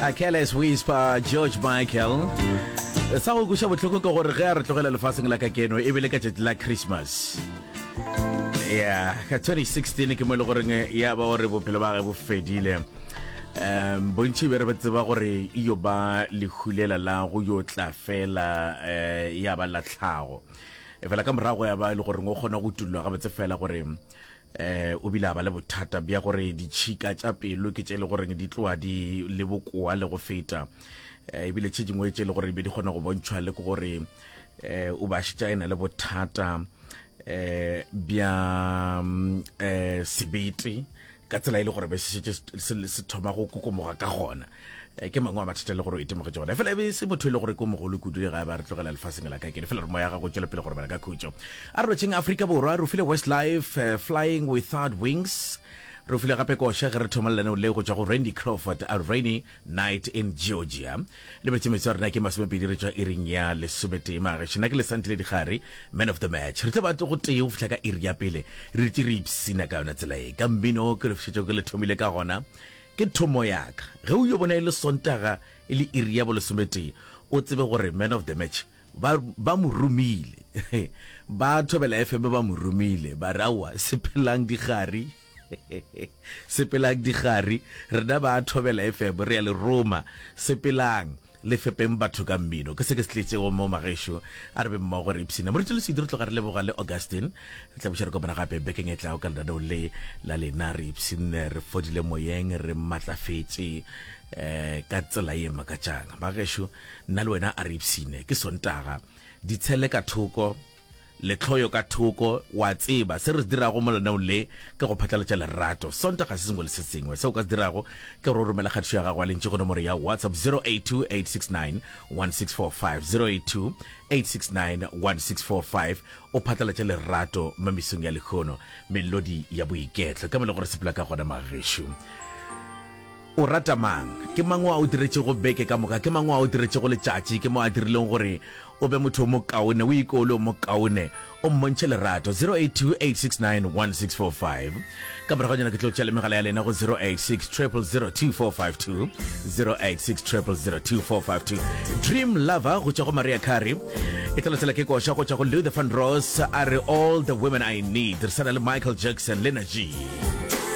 a careless whisper george michael sa go kuša bohloko ke gore ge a re tlogela lefaseng la ka keno e bele ka tšatši la christmas ya ka 2016 ke mo e le goreng ya ba gore bophelo ba ge bo fedile um bontši be re ba tseba gore e yo ba lehulela la go yo tla fela um ya ba latlhago fela ka morago ya ba e le goreng o kgona go tulwa gabotse fela gore Eh, o bile a ba le bothata bja gore ditšhika tša pelo ke tše e le goreng di tloa di le bokoa le go feta. Eh, ebile tše dingwe tše e le gore be di kgona go bontšhwa le ke gore eh, o ba šetša e na le bothata eh, bja mm, eh, sebete ka tsela e le gore be se šetše se- se se thoma go kokomoga ka gona Eh, ke mangwe a mathata le gore o itemogetse ona fela ebe se motho e le gore ko mogolo kudu le ga ba re tlogela lefaseng la ka kene fela re moya gago tswele pele gore bana ka khutso a re rotšheng aforika borwa re file west life uh, flying without wings re file gape koša ge re thomalelane le go tswa go randy crawford a rainy night in georgia le metsemetse wa rena ke masomepedi re tswa iring ya lesometee magaešo nna ke lesantile digare man of the match re tla ba go tee go fitlha ka iri ya pele re ritse re ipsina ka yona tsela e ka mmino ke lefišetso ke le thomile ka gona Ke thomo ya ka. Ge o yo bona e le Sontaga e le iri ya bolesometee, o tsebe gore Man of the Match ba, ba mo romile. Ba Thobela FM ba mo romile, ba re, Aowa, sepelang dikgari. Sepelang dikgari. Rena ba Thobela FM re a le roma. Sepelang. Le fepeng batho ka mmino. Ke se ke se tletšego mo Magešo. A re be mmogo re ipshine. Moruti Lesedi re tloga re leboga le Augustine. Re tla buša re kopana gape bekeng e tlago ka lenaneong le la lena. Re ipshinne re fodile moyeng, re matlafetše um ka tsela ye makatšang. Bagešo, nna le wena a re ipshine. Ke Sontaga. Ditshele ka thoko. Lehloyo ka thoko, o a tseba, se re se dirago mo lenaneong le ke go phatlalatša lerato. Sonta ga se sengwe le se sengwe. Se o ka se dirago ke gore o romele kgatišo ya gago ya lentšu go nomoro ya WhatsApp 0828691645, 0828691645, o phatlalatše lerato mo mesong ya lehono, melodi ya boiketlo. Ke mo le gore sepela ka gona, Magešu. O rata mang? Ke mang o a o diretšego beke ka moka? Ke mang o a o diretšego letšatši? Ke mo a dirilego gore o be motho o mokaone, o iko o le o mokaone, o mmontšhe lerato. 0828691645. Ka morago nyana ke tlo tšea le megala ya lena go 0860002452, 0860002452. Dream Lover go tšwa go Mariah Carey. E tla latela ke koša go tšwa go Luther Vandross a re All the Women I Need. Re sa na le Michael Jackson le Najee.